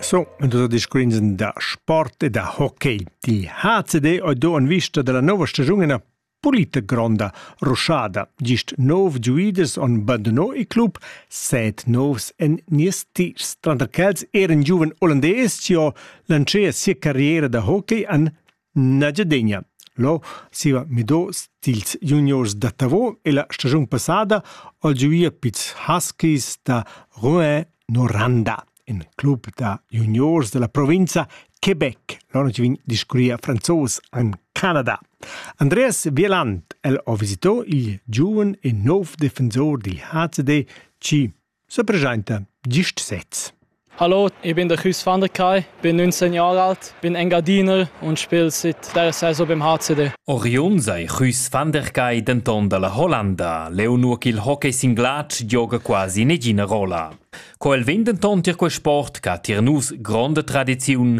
So, dus discuins da sport e da hockey. Die HCD ha do en vista della nova stagione una pulita gronda ruschada. Gist nov giuiders on bandonò il club, set novs en nies tirs. Tranter quels eran giuven olandés, ci ho lancià sia carriera da hockey an Nagyadegna. Lo siva mido stils juniors da Tavo e la stagiun passada ho giuia pits huskies da Rouen Noranda, in club da juniors della provinza Quebec. Loro ci vin discurria franzos an Canada. Andreas Wieland, el ho visito il giuven e nov defensor dil HCD C Sepresenta gist sez. Hallo, ich bin der Chus van der Kai, bin 19 Jahre alt, bin Engadiner und spiele seit der Saison beim HCD. Oriun sei Chus van der Kai denton dalla Hollanda. Leu nur ch'il hockey sin glatsch gioga quasi negina rolla. Co el vegn denton tier quel sport che ha tier nus gronda tradiziun,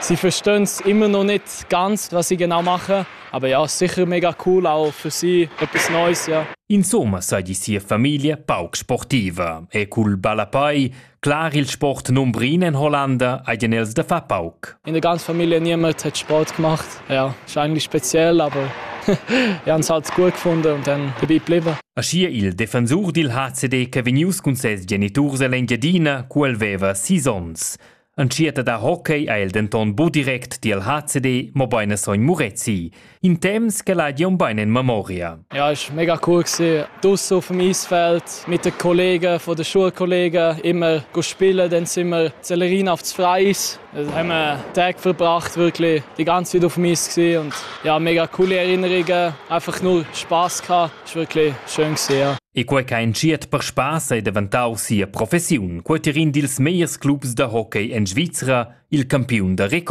Sie verstehen immer noch nicht ganz, was ich genau mache, aber ja, sicher mega cool auch für sie etwas Neues, ja. Insomma sei die sia famiglia pauc sportiva e cul ballapai clar il sport numbrin in Hollanda eigen els da fa pauc. In der ganzen Familie niemand hat Sport gemacht. Ja, ist eigentlich speziell, aber wir haben es halt gut gefunden und dann dabei geblieben. Aschi il defensur dil HCD che vegnius cun ses geniturs ell'Engiadina, cu el veva sis onns. En tsieta da hockey ha el denton bu direct tiel HCD, mobein a sogn Murezi. In temps che l'ha Gion bein en memoria. Ja, ist mega cool gewesen. Draussen auf dem Eisfeld mit den Kollegen von den Schulkollegen immer spielen, dann sind wir Sellerin auf das Freis. Da haben wir Tag verbracht, wirklich die ganze Zeit auf dem Eis gewesen und ja, mega coole Erinnerungen, einfach nur Spaß gehabt, ist wirklich schön gewesen. Ja. E quei ch'ha entschiet per spass ei daventau sia professiun, quei tier in dils megliers clubs da hockey en Svizra, il campiun da record.